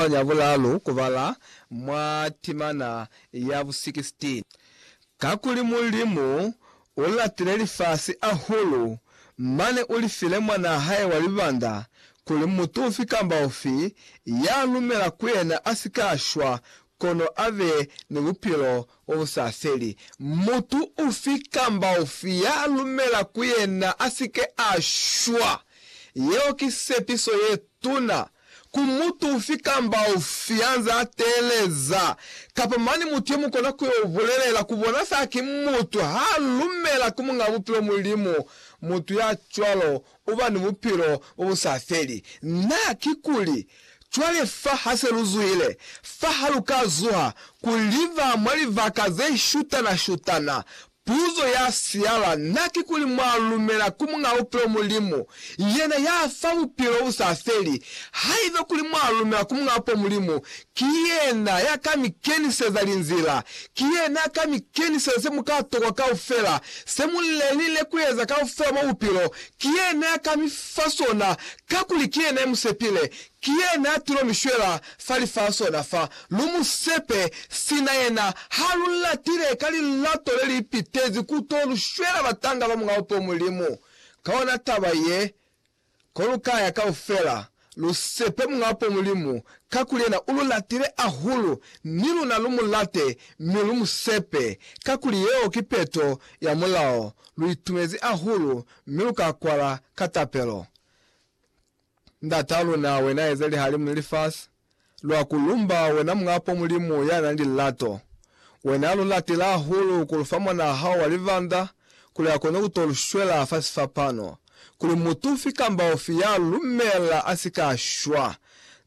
Talu ya Bulalu kubala mwa timana ya bu 16 Kakuli Mulimu ulatile lifasi ahulu, mane ulifile Mwanaa hae wa libanda, kuli mutu ufi kamba ufi ya lumela ku yena asika shwa, kono abe ni bupilo bobusafeli. Mutu ufi kamba ufi ya lumela ku yena asike ashwa. Yeo ki sepiso yetuna ku mutu ufi kamba ufi yanze ateleza, kapa mane mutu ye mukona ku yo bulelela ku bona sa ki mutu ha lumela ku Muñ'a Bupilo Mulimu, mutu ya cwalo uba ni bupilo bo bu sa feli. Na, kikuli, cwale fa ha se lu zuhile, fa ha lu ka zuha ku liba mwa libaka ze shutana-shutana, Puzo ya siala na kikuli mwa lumela ku Muñ'a Bupilo Mulimu, yena ya fa bupilo bu sa feli? Haiba kuli mwa lumela ku Muñ'a Bupilo Mulimu, ki yena ya ka mi keniseza linzila. Ki yena ya ka mi keniseza se mu ka tokwa kaufela, se mu lelile ku eza kaufela mwa bupilo. Ki yena ya ka mi fa sona, kakuli ki yena ya mu sepile. Ki yena tulo mi shwela fa lifasi ona fa. Lu mu sepe, sina yena ha lu latile ka lilato le li pitezi ku to lu shwela batanga ba Mulao po Mulimu. Ka ona taba ye, ko lu ka ya kaufela, lu sepe Mulao po Mulimu, kakuli yena u lu latile ahulu, ni luna lu mu late mi lu mu sepe, kakuli yeo ki peto ya Mulao. Lu itumezi ahulu mi lu ka kwala ka tapelo. Ndata luna, wena eze lihalimu ni lifasi, lwa ku lumba wena Muñ'a po Mulimu ya na ni lilato. Wena lu latile hahulu ku lu fa mwan'a hao wa libanda kuli a kone ku to lu shwela fa sifapano, kuli mutu ufi kamba ufi ya lu lumela a si ka shwa.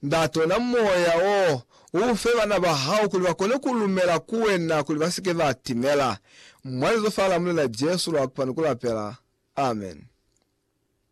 Ndate, ona moya wo, u u fe bana ba hao kuli ba kone ku lumela ku wena kuli ba si ke ba timela. Mwa lizo fa la Mulena Jesu lwa kupani ku lapela. Amen.